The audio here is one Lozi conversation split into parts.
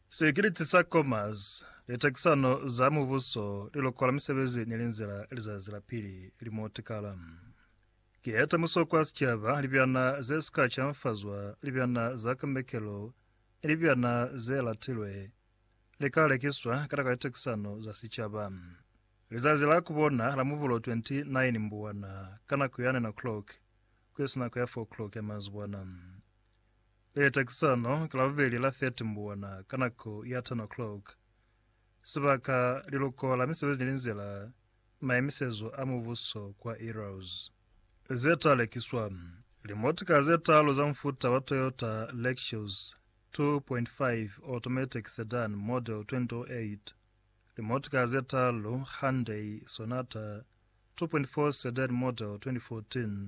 Sikiliti sa Commerce, litakisano za mubuso, lilokola misebezi ni linzila lizazi la pili limotikala. Ki eta musokwa sicaba, libyana ze sika canfazwa, libyana za kambekelo ni libyana ze latilwe, li ka lekiswa kata ka litakisano za sicaba. Lizazi la kubona la Mubulo 29 Mbuwana ka nako ya 9 o'clock ku isi nako ya 4 o'clock ya mazibwana. Leta ki sono ka Labubeli la 30 Mbuwana ka nako ya 10 o'clock. Sibaka, Liluko la Misebezi ni Linzila, Maemisezo a Mubuso kwa Eros. Ze ta lekiswa, Limotika ze talu za mufuta wa Toyota Lexus 2.5 Automatic Sedan Model 2008, limotika ze talu Hyundai Sonata 2.4 Sedan Model 2014,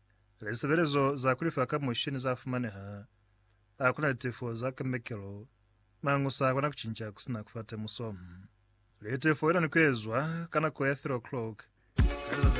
Lisebelezo za kulifa ka mushini za fumaneha. A kuna litefo za kemekelo, mañu sa kona kucinca kusina kufa temuso. Litefo ina ni kuezwa ka nako ya 3 o'clock ka lizazi la.